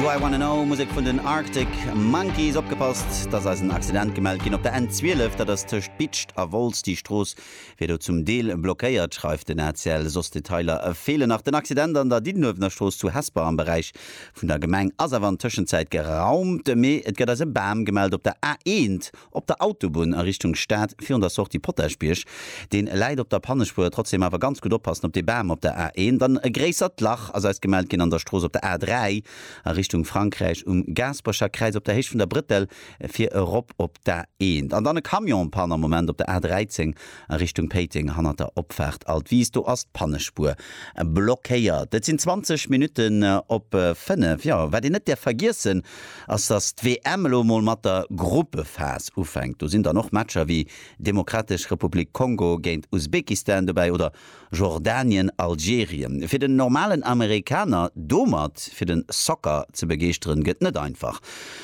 Do I Wanna Know, Musek vun den Arctic Monkeys. Opgepasst, et ass eis en Accident gemellt ginn op der N 12, dat ass tëscht Bitscht a Wolz. Déi Strooss wier do zum Deel blockéiert, schreift den ACL. Soss Detailer feelen nach. Den Accident an der Diddenuewener Strooss zu Hesper am Beräich vun der Gemeng ass awer an Tëschenzäit geraumt, mee et gëtt eis e Bam gemellt op der A 1, Op der Autobunn a Richtung Stad, virun der Sortie Potaschbierg, deen läit op der Pannespuer, trotzdem awer ganz gutt oppassen op dee Bam op der A1. Dann e gréissert Lach ass eis gemellt ginn an der Strooss op der A3 a Richtung Frankräich um Gaasperecher Kräiz op der Héicht vun der Brëttel fir erop op d'A1. An dann e Camion-Panne am Moment op der A13 a Richtung Péiteng hannert der Opfaart Alt Wiis, do ass d'Pannespuer blockéiert. Et sinn 20 Minutten op 5. Jo, wat een net däerf vergiessen, ass, datt d'WM elo emol mat der Gruppephas ufänkt. Do sinn dann och Matcher wéi Demokratesch Republik Kongo géint Usbekistan dobäi oder Jordanien, Algerien. Fir den normalen Amerikaner domat fir den Soccer ze begeeschteren, gëtt net einfach.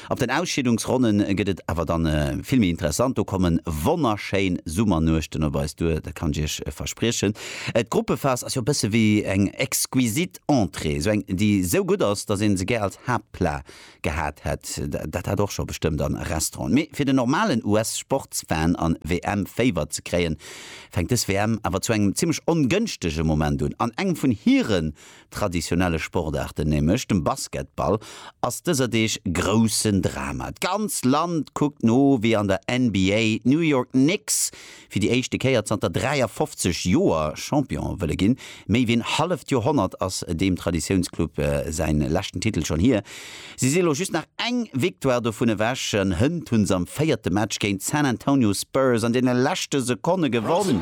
Ab den Ausscheedungsronnen gëtt et awer dann vill méi interessant. Do kommen wonnerschéin Summernuechten op eis duer, dat kann ech iech verspriechen. D'Gruppephas ass jo e bësse wéi eng exquisit Entrée, esou eng, déi esou gutt ass, dass een se gär als Haaptplat gehat hätt. Dat hat och scho bestëmmt a Restauranten. Mee fir den normalen US-Sportsfan an WM-Féiwer ze kréien, fänkt dës WM awer zu engem zimmlech ongënschtege Moment un. An engem vun hiren traditionelle Sportaarten, nämlech dem Basketball, ass dëser Deeg groussen Drama. D'ganz Land kuckt no, wéi an der NBA d'New York Knicks fir déi éischte Kéier zanter 53 Joer Champion wëlle ginn. Méi wéi en halleft Joerhonnert ass deem Traditiounsclub säin leschten Titel schonn hier. Si si lo just nach eng Victoire dovun ewech an hënt hu se am véierte Match géint d'San Antonio Spurs an deene leschte Sekonne gewonn.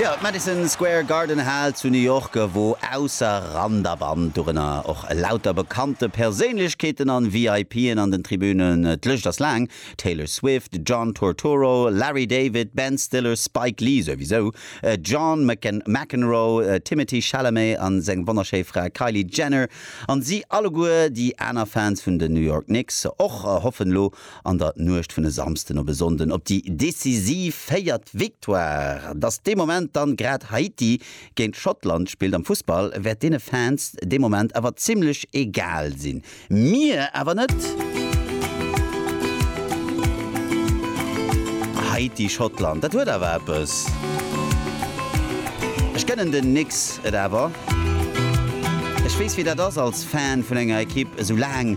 Jo, d'Madison Square Garden Hal zu New York, wou ausser Rand a Band dorënner och lauter bekannte Perséinlechkeeten an VIPen an den Tribünen. D'Lëscht ass laang, Taylor Swift, John Turturro, Larry David, Ben Stiller, Spike Lee souwisou, John McEnroe, Timothée Chalamet an seng wonnerschéi Fra Kylie Jenner an si alleguer, déi aner Fans vun den New York Knicks och, hoffen elo an der Nuecht vun e Samsden op e Sonnden op déi decisiv véiert Victoire. Datt dee Moment dann grad Haiti géint Schottland spillt am Fussball, wäert deene Fans dee Moment awer zimmlech egal sinn. Mir awer net. Haiti, Schottland, dat huet awer eppes. Ech gënnen den Knicks et awer. Ech weess wéi dat ass als Fan vun enger Ekipp, esou laang